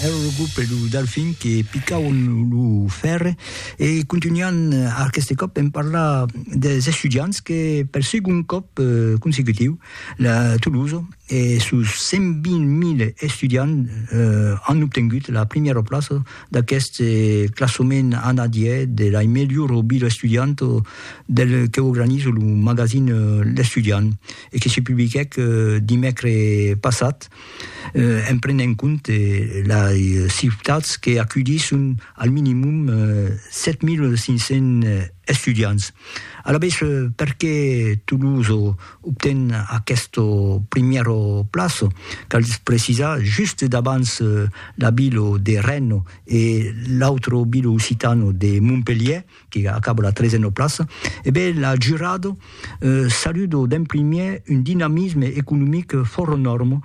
Ero lo grup e lo Delfin que picauen lo fèrre e contunhan aqueste còp en parlar des estudiants que per segond còp consecutiu la Tolosa e sos 120.000 estudiants an obtengut la primièra plaça d'aqueste classament anadièr de la melhora vila estudianta del que organiza lo magazin L'Estudiant e que se publiquèc dimècres passat. en prenent en compte las ciutats que aculhisson al minimum 7.500 estudiants. Alavetz, perqué Toulouse obten aquesta primièra plaça? Cal precisar, just davant la vila de Rennes e l'autra vila occitana de Montpelhièr, que acaba la trezena plaça, e ben la jurado saludo d'en primièr un dinamisme economic fòra nòrma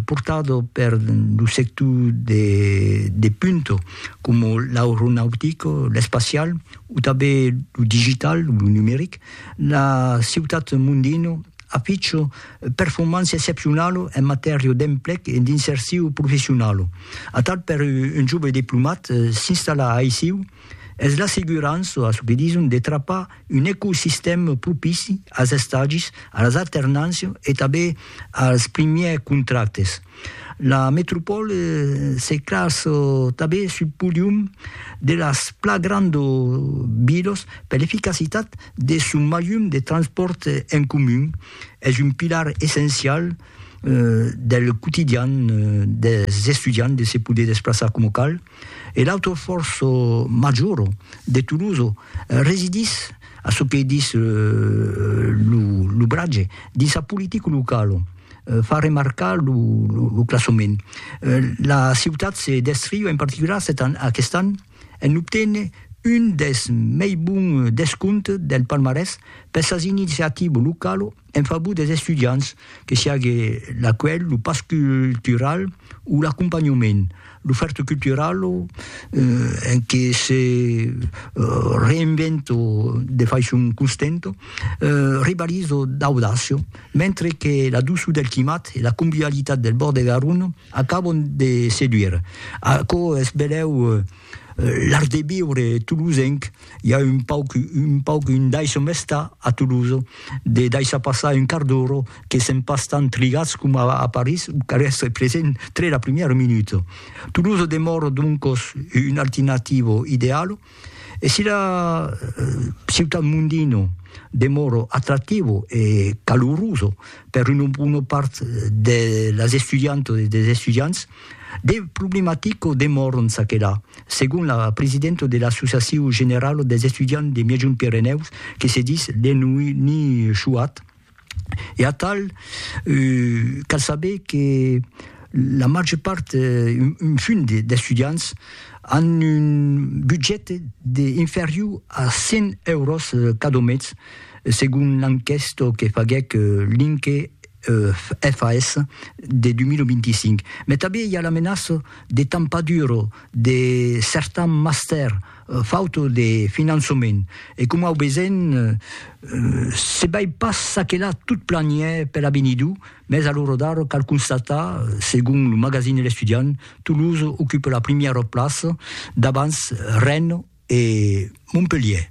portado per lo sector de punta coma l'aeronautic, l'espacial o tanben lo digital, lo numeric. La ciutat Mondino aficha performància excepcionala en matèria d'emplec e d'insercion professionala. Atal per un jove diplomat s'installar aicí es l'assegurança, a çò que dison, de trapar un ecosistèm propici als estagis, a las alternàncias e tanben als primièrs contractes. La metropòle se classa tanben sul podium de las plan grandas vilas per l'eficacitat de son maium de transpòrt en comun. Es un pilar essencial del quotidian dels estudiants de se poder desplaçar coma cal, E l'autre fòrç major de Toulouse residís, a çò que dis lo bratge, dins sa politica locala, far remarcar lo classament. La ciutat se descriu en particular aquest an en obténer un dels mei bons descomptes del palmarès per sas iniciativas localas, En favor des estudiants, que siague l'acuelh, lo pas cultural o l'acompanhament, l'ofèrta cultural en que se reinvento de faiçon constenta, rivalizo d'audacia, mentre que la doçor del climat e la convivialitat del bòrd de Garonne acabon de seduire. Aquò es benlèu l'art de viure tolosenc. i a un pauc, un pauc, un daisho mestà a Toulouse, de daishar passar un quart d'ora, que sèm pas tant trigatz coma a París, o cal èstre present tre la primièra minuta. Toulouse demòra doncos una alternativa ideala, e si la ciutat mondina demòra atractiva e calorosa per una bona part de las estudiantas e dels estudiants, De problematico demòron ça que là, segon la presidenta de l'Associacion Generala dels Estudiants de Miègjont Pirenèus, que se dis Léonie Chouat. E atal, cal saber que la màger part, un fum d'estudiants, an un budget inferior a 100 euros cada mes, segon l'enquèsta que faguèc l'INCE FAS de 2025, mai tanben i a la menaça de tampar-dura de certans mastèrs fauta de finançament e coma au vesèm se bai pas ça que là tot planièr per avenidur, mes a l'ora d'ara cal constatar, segon lo magazin de l'Estudiant, Toulouse ocupa la primièra plaça davans Rennes e Montpelhièr.